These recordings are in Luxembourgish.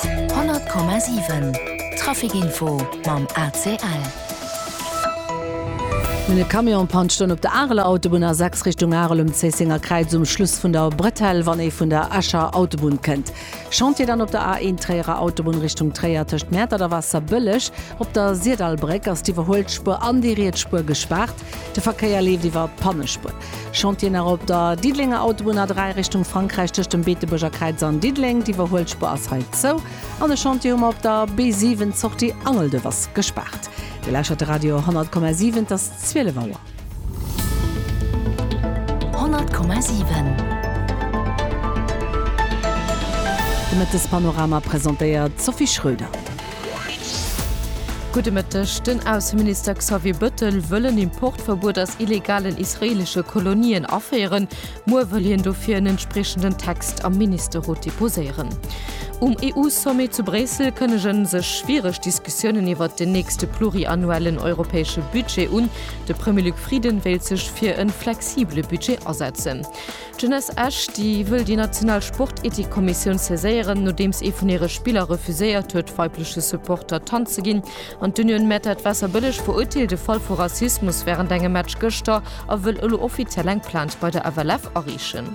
100,7 Traficinfo mam ACL. E Camion pantscht en op der Areler Autobunn A6 Richtung Arel um Zéissenger Kräiz um Schluss vun der Bretelle, wann ee vun der Escher Autobunn kënnt. Chantier dann op der A1 Tréierer Autobunn Richtung Tréier tëscht Mäertert a Waasserbëlleg. Op der Sirdallbréck ass d'Iwwerhuelspuer an déi riets Spuer gespaart. De Verkéier leeft iwwer d'Pannespuer. Chantier nach op der Diddelenger Autobunn A3 Richtung Frankräich tëscht dem Beetebuerger Kräiz an Diddeleng. D'Iwwerhuelspur ass hei zou. An de Chantier hu mer op der B7. D'Sortie Angelduerf ass gespaart. Dir lauschert de Radio 10,7. Et ass 12 Auer. 10,7 De Mëttespanorama presentéiert d'Sophie Schröder. Gudde Mëtteg. Den Ausseminister Xavier Bëttel wëll en Importverbuet aus illegalen israeelesche Kolonien aféieren. Muer wëll hien dofir en entspriechenden Text am Ministerrot deposéieren. Um EU-Sommet zu Bréissel kënnege sech schwiereg Diskussiounen iwwert den nächste pluriannuellen europäesche Budget un. De Premier Luc Frieden wéilt sech fir e flexibele Budget asetzen. D'Jeunesse Esch, déi wëll déi national Sportethikkommissioun saiséieren, nodeems ee vun hire Spiller refuséiert huet, weibleche Supporter d'Hand ze ginn. An d'Union Mertert Waasserbëlleg verurteelt e Fall vu Rassismus wärend engem Match gëschter a wëll elo offiziell eng Plainte bei der FLF areechen.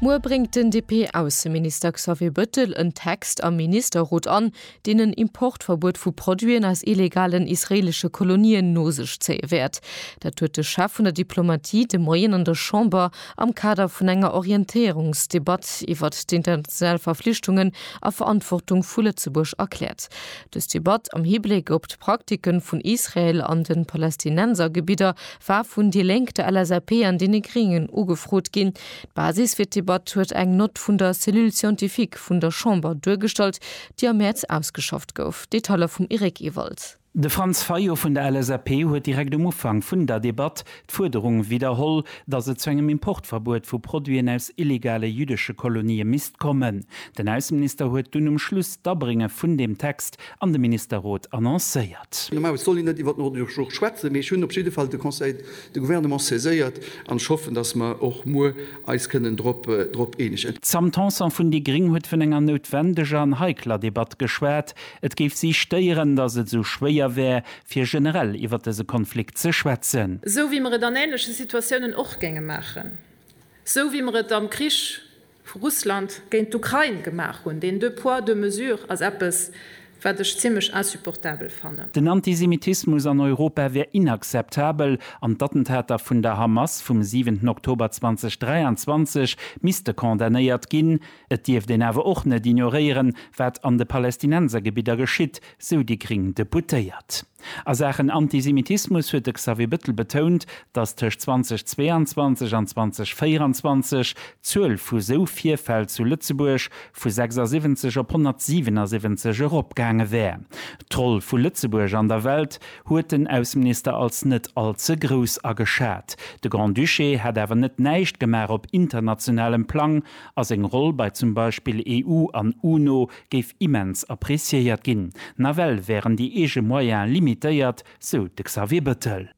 Muer bréngt den DP-Ausseminister Xavier Bëttel en Text am Ministerrot an, deen en Importverbuet vu Produiten aus illegalen israeelesche Kolonien no sech zéie wäert. Dat huet de Chef vun der Diplomatie de Moien an der Chamber am Kader vun enger Orientéierungsdebatt iwwert d'international Verflichtungen a Verantwortung vu Lëtzebuerg erkläert. Dës Debatt am Hibléck op d'Praktike vun Israel an de Palästinensergebidder war vun déi Lénk, der LSAP an deene Gréngen ugefrot ginn. D'Basis fir d'Debatt huet eng Nott vun der Cellule scientifique vun der Chamber duergestallt, déi am Mäerz ausgeschafft gouf. Detailer vum Eric Ewald. De Franz Fayot vun der LSAP huet direkt um Ufank vun der Debatt d'Fuerderung widderholl, datt et zu engem Importverbuet vu Produiten aus illegale jüddesche Kolonië misst kommen. Den Ausseminister huet dunn um Schluss d'Abrénge vun deem Text an de Ministerrot annoncéiert. Normalerweis soll een net iwwer d'Nordurgeoch schwätzen, mee ech hunn op jidde Fall de Conseil De Gouvernement saiséiert an ech hoffen, dass mer och muer eis kënnen drop eenegen. D'Sam Tanson vun déi gréng huet vun enger noutwendeger an heikler Debatt geschwat. Et géif si stéieren, datt et esou schwéier wär, fir generell iwwer dëse Konflikt ze schwätzen. Esou wéi mer et an änleche Situatiounen och géinge maachen. Esou wéi mer et am Krich vu Russland géint d'Ukrain gemaach hunn. Deen deux poids, deux mesures ass eppes, wat ech zimlech insupportabel fannen. Den Antisemitismus an Europa wär inakzeptabel an d'Attentater vun der Hamas vum 7 Oktober 2023 misste condamnéiert ginn. Et dierft een awer och net ignoréieren, wat an de Palästinensergebidder geschitt, sou déi gring Deputéiert. A Saachen Antisemitismus huet de Xavier Bettel betount, datt tëscht 2022 an 2024 d'Zuel vu sou Virfäll zu Lëtzebuerg vu 76 op 177 eropgaange wär. D'Roll vu Lëtzebuerg an der Welt huet den Ausseminister als net all ze grouss ageschat. De Grand-Duché hätt awer net näischt gemaach op internationalem Plang a seng Roll bei zum Beispill EU an UNO géif immens appreciéiert ginn. Nawell wären déi eege Moyene limitéiert, sou de Xavier Bëttel.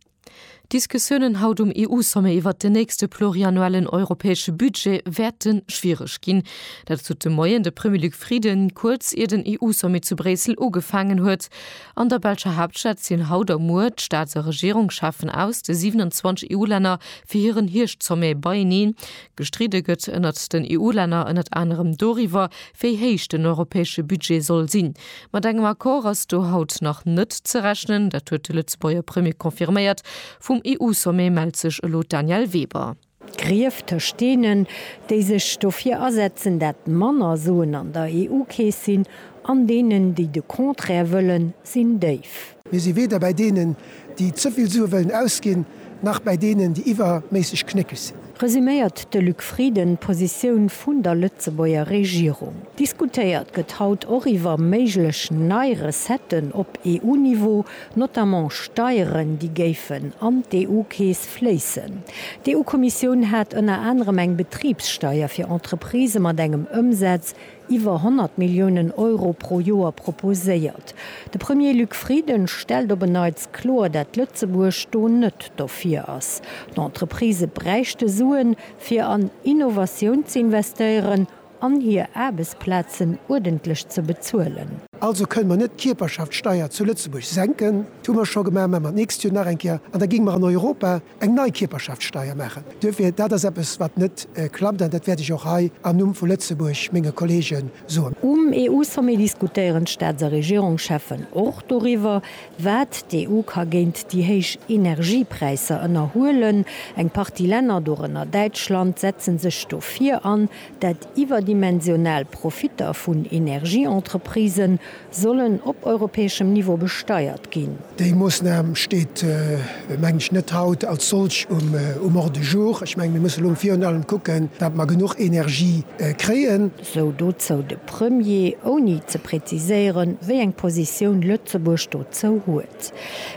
D'Diskussiounen haut um EU-Sommet iwwert den nächste pluriannuellen europäesche Budget wäerte schwiereg ginn. Dat sot de Moien de Premier Luc Frieden, kuerz ier den EU-Sommet zu Bréissel ugefaangen huet. An der belscher Haaptstad sinn haut a muer d'Staats a Regierungscheffen aus de 27 EU-Länner fir hiren Hierscht-Sommet beieneen. Gestridde gëtt ënnert den EU-Länner ënnert anerem doriwwer, wéi héich den europäesche Budget soll sinn. Mat engem Accord ass do haut nach net ze rechnen, dat huet de Lëtzebuerger Premier confirméiert. Vum EU-Sommet mellt sech elo d'Danièle Weber. D'Grief tëscht deenen, déi sech dofir asetzen, dat manner Suen an der EU-Keess sinn, an deenen, déi de Contraire wëllen, sinn déif. Mir si weder bäi deenen, déi ze vill Sue wëllen ausginn, nach bäi deenen, déi iwwerméisseg knéckeg sinn. Resüméiert de Luc Frieden d'Positioun vun der Lëtzebuerger Regierung. Diskutéiert gëtt haut och iwwer méiglech nei Recetten op EU-Niveau, notamment Steieren, déi géifen an d'EU-Keess fléissen. D'EU-Kommissioun hat ënner anerem eng Betribssteier fir Entreprisë mat engem Ëmsaz iwwer 100 Milliounen Euro pro Joer proposéiert. De Premier Luc Frieden stellt op en Neits kloer, dat Lëtzebuerg do net dofir ass. D'Entreprisë bräichte Suen, fir an Innovatioun ze investéieren an hir Aarbechtsplazen uerdentlech ze bezuelen. Also kënnen mer net d'Kierperschaftssteier zu Lëtzebuerg senken, dat hu mer scho gemaach, mä mer d'nächst Joer nach eng Kéier, an da géinge mer an Europa, eng nei Kierperschaftssteier maachen. Duerfir, dat ass eppes, wat net klappt, an dat wäert ech och hei am Numm vu Lëtzebuerg menge Kollege soen. Um EU-Sommet diskutéieren d'Staats a Regierungscheffen och doriwwer, wat d'EU ka géint déi héich Energiepräisser ënnerhuelen. Eng Partie Länner, dorënner Däitschland, setzen sech dofir an, dat iwwerdimensional Profitter vun Energieentreprisen Sollen op europäeschem Niveau besteiert ginn? Déi Moosnam steet, mengen ech, net haut als solch um Ordre du jour. Ech mengen, mir mussen elo virun allem kucken, datt mer genuch Energie kréien. Sou dozou de Premier, ouni ze präziséieren, wéi eng Positioun Lëtzebuerg dozou huet.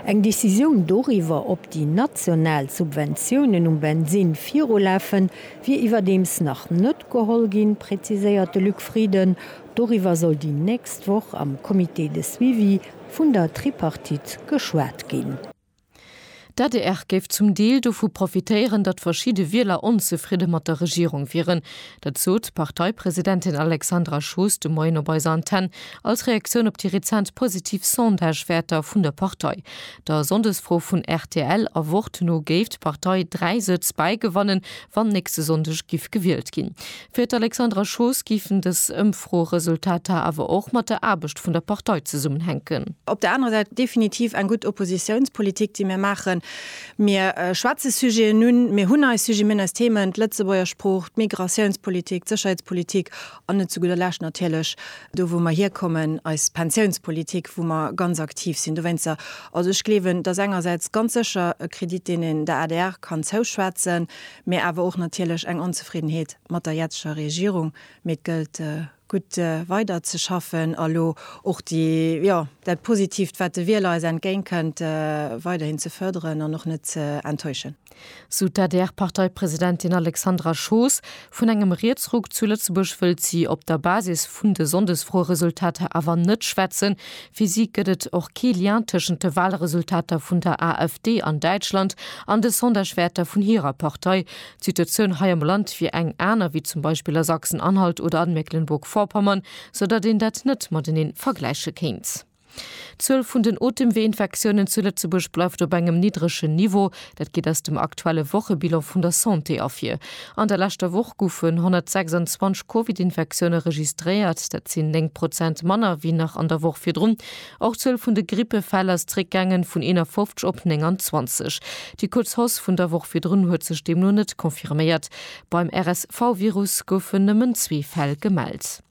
Eng Decisioun doriwwer, ob déi national Subventiounen um Bensinn virulafen, wier iwwerdeems nach net geholl ginn, präziséiert de Luc Frieden. Doriwwer soll déi nächst Woch am Comité de suivi vun der Tripartite geschwat ginn. D'adr géif zum Deel dovu profitéieren, datt verschidde Wieler onzefridde mat der Regierung wieren. Dat sot d'Parteipresidentin Alexandra Schoos de Moien op eiser Antenn als Reaktioun op déi rezent positiv Sondagewäerter vun der Partei. Der Sonndesfro vun rtl A Wort no géif d'Partei dräi Sëtz bäigewannen, wann nächste Sonndeg giff gewielt ginn. Fir d'Alexandra Schoos géifen dës Ëmfroeresultater awer och mat der Aarbecht vun der Partei zesummenhänken. Op der anerer Säit definitiv eng gutt Oppositiounspolitik, déi mir maachen. Mir schwätze Sujeten un, mir hunn eis Sujeten, mir hunn eis Themen, d'Lëtzebuerger Sprooch, d'Migratiounspolitik, d'Sécherheetspolitik an net zu gudder Lescht natierlech, do wou mer hierkommen, eis Pensiounspolitik, wou mer ganz aktiv sinn dowéinster. Also ech gleewen, et ass engersäits ganz sécher e Kredit, deen een der adr kann zouschwätzen, Mee awer och natierlech eng Onzefriddenheet mat der jetzeger Regierung. Mee et gëllt gutt weider ze schaffen a lo och déi, jo, dat Positiivt, wat de Wieler eis entgéintkënnt, weiderhin ze fërderen an och net ze enttäuschen. Sou d'ADR-Parteipresidentin Alexandra Schoos. Vun engem Rietsruck zu Lëtzebuerg wëllt si op der Basis vun de Sonndesfroeresultater awer net schwätzen. Fir si gëtt et och kee Lien tëschent de Walresultater vun der AfD an Däitschland an de Sondagewäerter vun hirer Partei. D'Situatioun hei am Land wier eng aner wéi zum Beispill a Sachsen-Anhalt oder an Mecklenburg-Vorpommern, sou datt een dat net matenee vergläiche kéint. D'Zuel vun den Otemweeinfektiounen zu Lëtzebuerg bleift op engem niddregen Niveau. Dat geet aus dem aktuelle Wochebilan vun der Santé ervir. An der leschter Woch goufen 126 Covid-Infektioune registréiert. Dat sinn 9 Prozent manner wéi nach an der Woch virdrun. Och d'Zuel vun de Grippefäll ass zréckgaangen, vun 51 op 29. Déi kuerz Hausse vun der Woch virdrun huet sech deemno net confirméiert. Beim RSV-Virus goufen nëmmen zwee Fäll gemellt.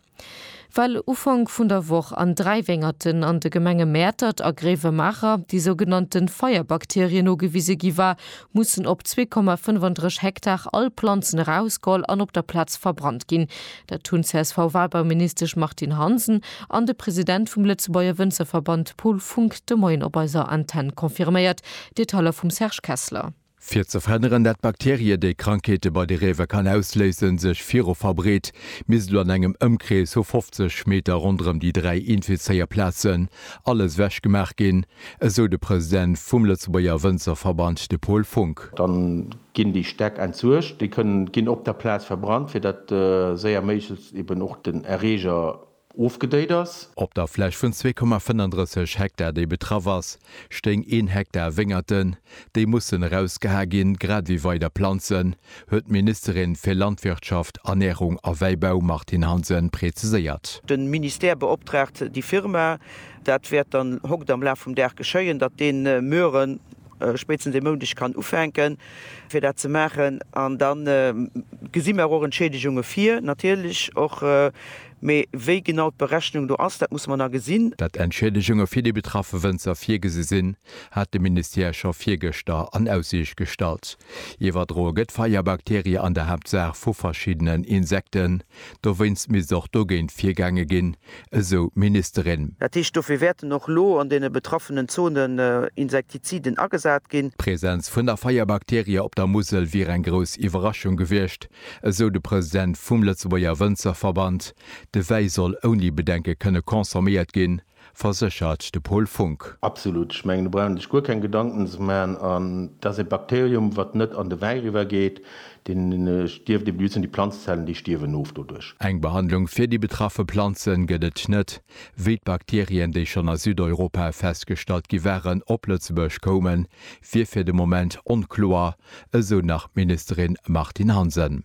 Well Ufank vun der Woch an dräi Wéngerten an de Gemenge Mäertert a Gréiwemaacher déi sougenannte Feierbakterie nogewise gi war, mussen op 2,35 Hektar all Planzen erausgeholl an op der Plaz verbrannt ginn. Dat hunn d'CSV-Walbauministesch Martine Hansen an de President vum Lëtzebuerger Wënzerverband Paul Funck de Moien op eiser Antenn confirméiert. Detailer vum Serge Kessler. Fir ze verhënneren, dat d'Bakterie, déi Krankheete bei de Réiwer kann ausléisen, sech viru verbreet, misst elo an engem Ëmkrees vu 50 Meter ronderëm déi dräi Infizéierplazen alles ewech gemaach ginn, esou de President vum Lëtzebuerger Wënzerverband, de Paul Funck. Dann ginn déi Stäck entsuergt, déi kënnen ginn op der Plaz verbrannt, fir dat séier méiglechst eben och den Erreeger ofgedéit ass. Op der Fläch vun 2,35 Hektar, déi betraff ass, stéing een Hektar Wéngerten. Déi mussen erausgeha ginn, grad ewéi weider Planzen, huet d'Ministerin fir Landwirtschaft, Ernärung a Wäibau Martine Hansen preziséiert. De Ministère beoptraagt déi Firma, dat wäert dann hokt am Laf vum Dag geschéien, datt dee Mueren spéitstens e Moundeg kann ufänken, fir dat ze maachen. An da gesi mer och Entschiedegunge vir, natierlech och. Mee wéi genau d'Berechnung do ass, dat musse mer nach gesinn. Datt Entschiedegunge fir déi betraffe Wënzer virgesi sinn, hat de Ministère scho virgëschter an Aussiicht gestallt. Iwwerdroe gëtt Feierbakterie an der Haaptsaach vu verschiddenen Insekten, Dowéinst misst och dogéint virgaange ginn, esou d'Ministerin. Dat heescht, dofir wäerten och elo an deene betraffenen Zonen Insektiziden agesat ginn. D'Presenz vun der Feierbakterie op der Musel wier eng grouss Iwwerraschung gewiescht, esou de President vum Lëtzebuerger Wënzerverband. De Wäi soll ouni Bedenke kënne consomméiert ginn. verséchert de Paul Funck. Absolut. Ech mengen, do brauch een sech guer keng Gedanken ze maachen. An et ass e Bakterium, wat net an de Wäi eriwwergeet. Deen stierft ebe just un. Déi Planzezellen, déi stierwen of doduerch. Eng Behandlung fir déi betraffe Planze gëtt et net. Wéi d'Bakterien, déi schonn a Südeuropa festgestallt gi waren, op Lëtzebuerg koumen, wier fir de Moment onkloer, esou nach d'Ministerin Martine Hansen.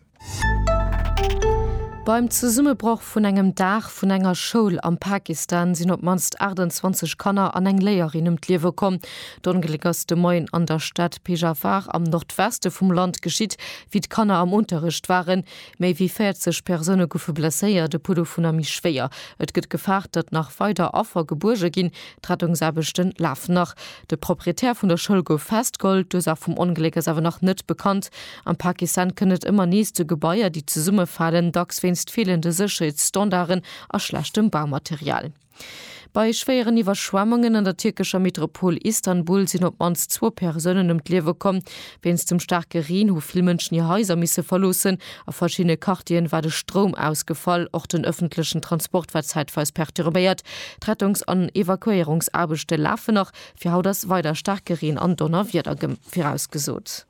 Beim Zesummebroch vun engem Daach vun enger Schoul am Pakistan sinn op d'mannst 28 Kanner an eng Léierin ëm d'Liewe komm. D'Ongléck ass de Moien an der Stad Pejawar am Nordweste vum Land geschitt, wéi d'Kanner am Unterrecht waren. Méi wéi 40 Persoune goufe blesséiert, e puer dovunner méi schwéier. Et gëtt gefaart, datt nach weider Affer gebuerge ginn. D'Rettungsaarbechte lafen nach. De Proprietär vun der Schoul gouf festgeholl. D'Ursaach vum Ongléck ass awer nach net bekannt. Am Pakistan kënnt et ëmmer nees zu Gebaier, déi zesummefalen, dacks wéinst feelende Sécherheetsstandarden a schlechtem Baumaterial. Bei schwéieren Iwwerschwemmungen an der tierkescher Metropol Istanbul sinn op d'mannst zwou Persounen ëm d'Liewe komm. Wéinst dem staarke Reen hu vill Mënschen hir Haiser misse verloossen. A verschiddene Quartieren war de Stroum ausgefall. Och den ëffentlechen Transport war zäitweis perturbéiert. D'Rettungs an Evakuéierungsaarbechte lafen nach. Fir haut ass weider staarke Reen an Donnerwieder virausgesot.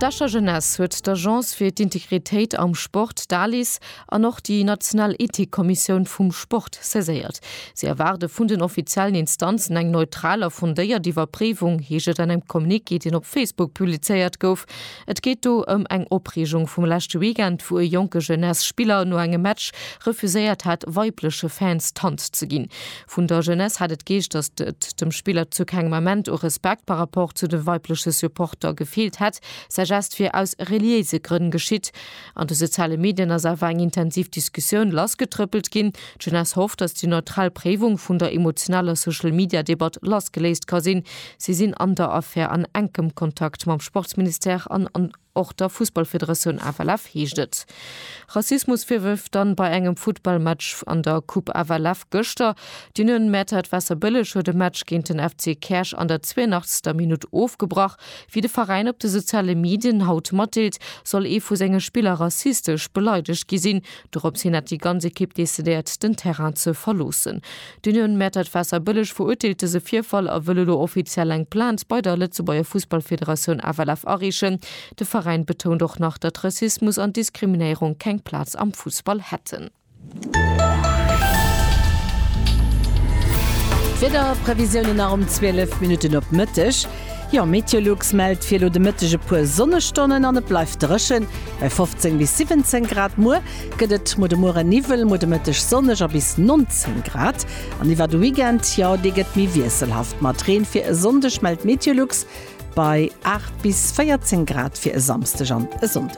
D'Escher Jeunesse huet d'Agence fir d'Integritéit am Sport, d'ALIS, an och déi national Ethikkommissioun vum Sport saiséiert. Si erwaarde vun den offiziellen Instanzen eng neutral a fondéiert Iwwerpréiwung, heescht et an engem Communiqué, deen op Facebook publizéiert gouf. Et geet do ëm eng Opreegung vum leschte Weekend, wou e jonke Jeunesse-Spiller no engem Match refuséiert hat, weibleche Fans d'Hand ze ginn. Vun der Jeunesse hat et geescht, datt et dem Spiller zu kengem Ament u Respekt par rapport zu de weibleche Supporter gefeelt hätt. Säi Gest wier aus reliéise Grënn geschitt. An de soziale Medien ass awer eng intensiv Diskussioun lassgetrëppelt ginn. D'Jeunesse hofft, datt déi neutral Préiwung vun der emotionaler Social-Media-Debatt lassgeléist ka sinn. Si sinn an der Affär an enkem Kontakt mam Sportsministère an an. Och der Fussballfederatioun FLF heescht et Rassismusvirwërf dann bei engem Futtballmatch an der Coupe FLF gëschter. D'Union Mäertert Wasserbëlleg huet e Match géint den FC Käerch an der 82. Minutt ofgebrach. Wéi de Veräin op de soziale Medien haut matdeelt, soll ee vu senge Spiller rassistesch beleidegt gi sinn, Dorops hin hat déi ganz Ekipp decidéiert, den Terrain ze verloossen. D'Union Mäertert Waasserbëlleg verurteelt dëse Virfall a wëll elo offiziell eng Plainte bei der Lëtzebuerger Fussballfederatioun FLF areechen. De Veräin betount och nach, datt Rassismus an Diskriminéierung keng Plaz am Fussball hätten. D'Wiederprevisiounen nach um 12 Minutten op Mëtteg. Jo, Meteolux mellt fir elo de Mëtteg e puer Sonnestonnen an et bleift dréchen, bei 15 bis 17 Grad. Muer gëtt et mol de Muere Niwwel, mol de Mëtteg sonneg a bis 19 Grad. An iwwer de Weekend, jo, dee gëtt méi wiesselhaft mat Reen. Fir e Sonndeg mellt Meteolux bei 8 bis 14 Grad fir e Samsdeg an e Sonndeg.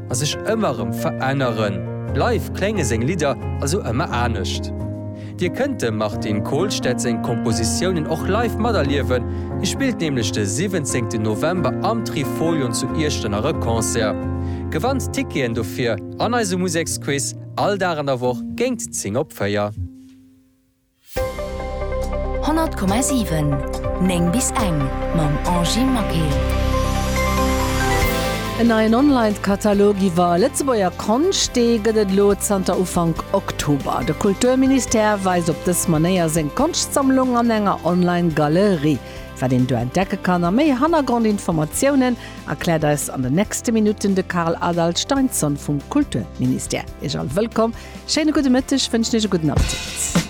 a sech ëmmer erëm veränneren, bleiw klénge seng Lidder also ëmmer anescht. Dir kënnt dem Martin Kolstad seng Kompositiounen och live materliewen, hie spillt nämlech de 17 November am Trifolion zu Iechternach e Concert. Gewannt d'Ticketen dofir an eisem Museksquiz all Dag an der Woch géingt 10 op 4. 100,7 9 bis eng mam Angie Maquet. En neien Online-Katalog iwwer Lëtzebuerger Konscht, dee gëtt et elo zanter Ufank Oktober. De Kulturministère weist op dës Manéier seng Konschtsammlung an enger Online-Galerie. Wat een do entdecke kann a méi Hannergrondinformatiounen erkläert eis an den nächste Minutten de Carl Adaldt Steinsson vum Kulturministère. Iech all wëllkomm, schéine gudde Mëtteg wënschen iech e gudden Appetit.